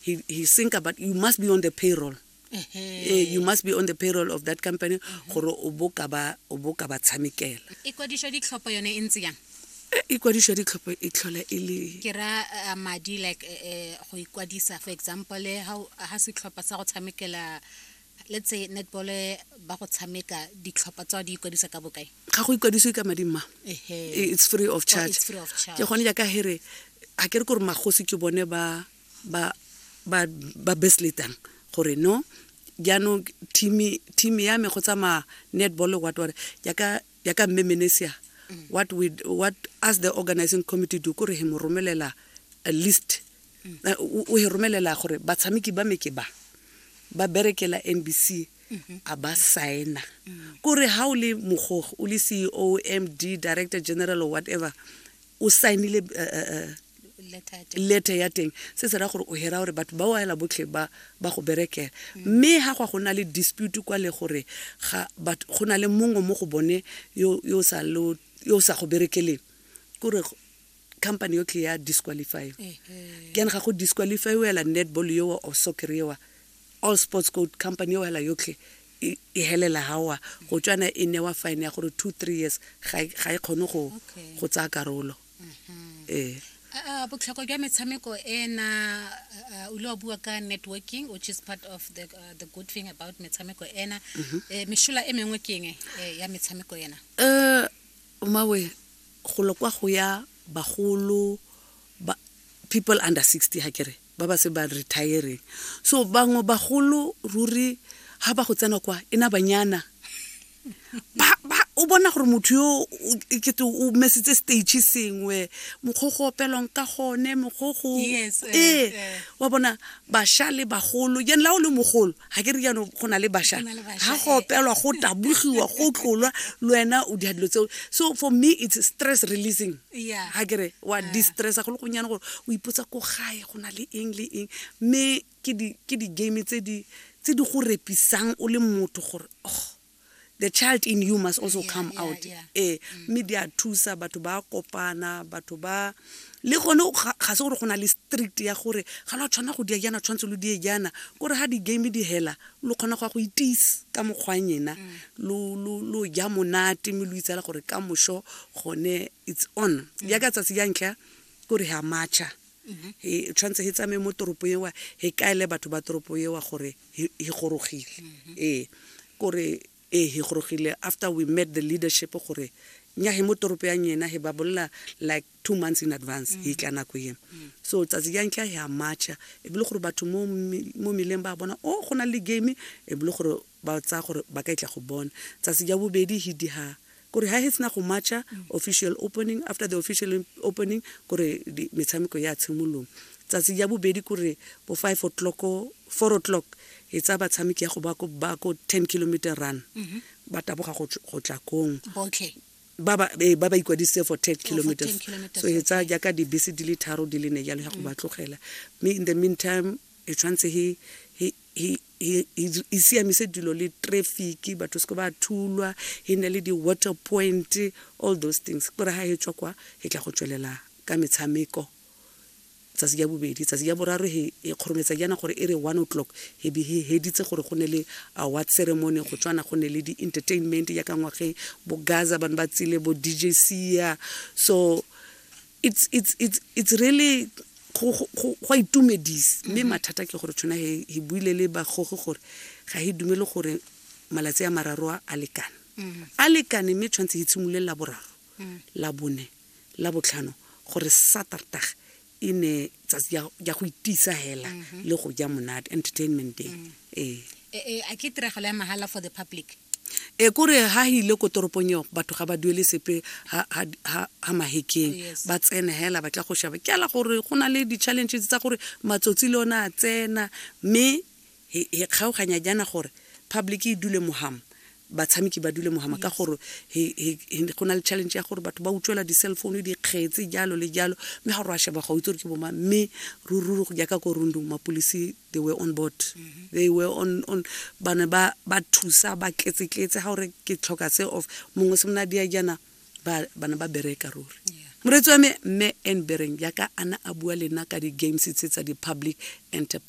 he, he think about you must be on the payroll eh, you must be on the payroll of that company mm-hmm. gore o bo ka ba tshamekela e kwadišwa ditlhopho yone e ntse yang eh, e kwadišwa ditlhopho e tlhola e le ke ra eh, madi like eh, go ikwadisa for example ga setlhopha sa go tshamekela let's say netball ba go tshameka ditlhopha tsa di ikwadisa ka bokae ga go ikwadisiwe ka madi mma it's free of oh, charge ke gone jaaka here ga ke re kore magosi ke bone ba ba ba ba besletang gore no jaanong team ya me go tsamaya netball what what yaka yaka mme menesia what we what as the organizing committee do kore he mo romelela a list eh, o he romelela gore batshameki ba me ke ba ba berekela NBC a ba signa kore ha o le mogogo o le CEO MD director general or whatever o signile eh, eh, eh, letter ya teng se se ra gore o hera gore batho ba o ela botlhe ba ba go berekela mme ha gwa go na le dispute kwa le gore ga batho go na le mongwe mo go bone yo yo sa lo yo sa go berekeleng kore company yo tle ya disqualify ke ga go disqualify o ela netball yo o soccer yo all sports code company yo ela yotlhe e, e helela ha wa go tswana e newa fine ya gore 2 3 years ga e, ga e kgone go go tsaya karolo mm-hmm. ee botlhokwa jwa metshameko e na o ile wa bua ka networking which is part of the, uh, the good thing about metshameko ena mm-hmm. eh, mešola e mengwe ke enge eh, ya metshameko ena um omawe golo kwa go ya bagolo people under sixty ga kere ba ba se ba retiring so bangwe bagolo ruri ga ba go tsena kwa e na banyana o bona gore motho yo kete o mesitse stage sengwe mokgwa go opelwang ka gone mokgwa go eh, ee eh. wa bona basha le bagolo jane la o le mogolo ga ke re jaanong go na le basha ga go eh. opelwa go tabogiwa go tlolwa le wena o dilo tseo so for me it's stress releasing Yeah. ga kere wa distressa go le gonyane gore o ipotsa ko gae go na le eng le eng mme ke di- ke di-game tse di tse di go repisang o le motho gore oh the child in you must also Yeah, come yeah, out yeah. ee mme di a thusa batho ba kopana batho ba le gone o- ga ga se gore go na le street ya gore ga la tshwana go dia jaana tshwanetse lo die jaana kore ga di-game di hela lo kgona go ya go itise ka mokgwang ena lo ja monate mme lo itsela gore ka moso gone it's on jaaka tsatsi ja ntlha kore ga matšha e tshwanetse he tsamaye mo toropo ewa he kaele batho ba toropo ewa gore he gorogile ee kore ee he gorogile after we met the leadership gore nya he mo toropo ya nyena he ba bolela like two months in advance e tla nako e so tsatsi ya ntlha ya marcha e bile gore batho mo mi- mo meleng ba bona o go na le game e bile gore ba tsaya gore ba ka e tla go bona tsatsi ya bobedi he diha kore ha he sena go marcha official opening after the official opening kore di- metshameko ya tshimolong tsatsi ya bobedi kore bo five o'clock o- four o'clock e tsaya batshameki ya go ba ko- ba ko ten kilometer run ba taboga go tl- go tla kong botlhe ba ba eh, ba ba ikwadisitse for 10 kilometers 10 kilometers, so e tsaya okay. jaaka dibese di le tharo di le ne jalo ya go ba tlogela mme in the meantime e tshwanetse he he he he- he- e siamise dilo le traffic batho seke ba thulwa e ne le di-water point all those things kore ga e tswa kwa e tla go tswelela ka metshameko tsatsi ya bobedi tsatsi ya boraro he e kgorometsa jaana gore e re one o'clock he be he heditse gore go ne le award ceremony go tswana go ne le di-entertainment ya ka ngwageng bo gaza bane ba tsile bo dj sia so it's, it's, it's, it's really go itumedise mme mathata ke gore tshwana he he buile le bagoge gore ga he dumele gore malatsi a mararo a lekane a lekane mme tshwanetse he tshimolole la boraro la bone la botlhano gore saterdag e ne tsatsi ya ya go itisa hela le go ja monate entertainment day ee E- e, a ke tiragalo ya mahala for the public e kore ha hile ko toropong eo batho ga ba duele sepe ha- ha ha- ha mahekeng Oh, yes. ba tsene hela ba tla go shaba ke ala gore go na le di-challenges tsa gore matsotsi le one a tsena mme He kgaoganya jaana gore public e dule moham, batshameki ba dule mohama ka gore he he go na le challenge ya gore batho ba utswela di-cell phone, dikgetse, jalo le jalo. Mme ga o re a sheba ga o itse gore ke bomang. Mme ruri go jaaka ko Rundung mapolisi they were on board. Mm-hmm. They were on on ba ne ba ba thusa ba tletse-tletse ga o re ke tlhoka se of mongwe se mona dia jaana ba ba ne ba bereka ruri. Yeah. Moretsi wa me mme Anne Bereng jaaka ana a bua lena ka di-games tse tsa di-public enterprise.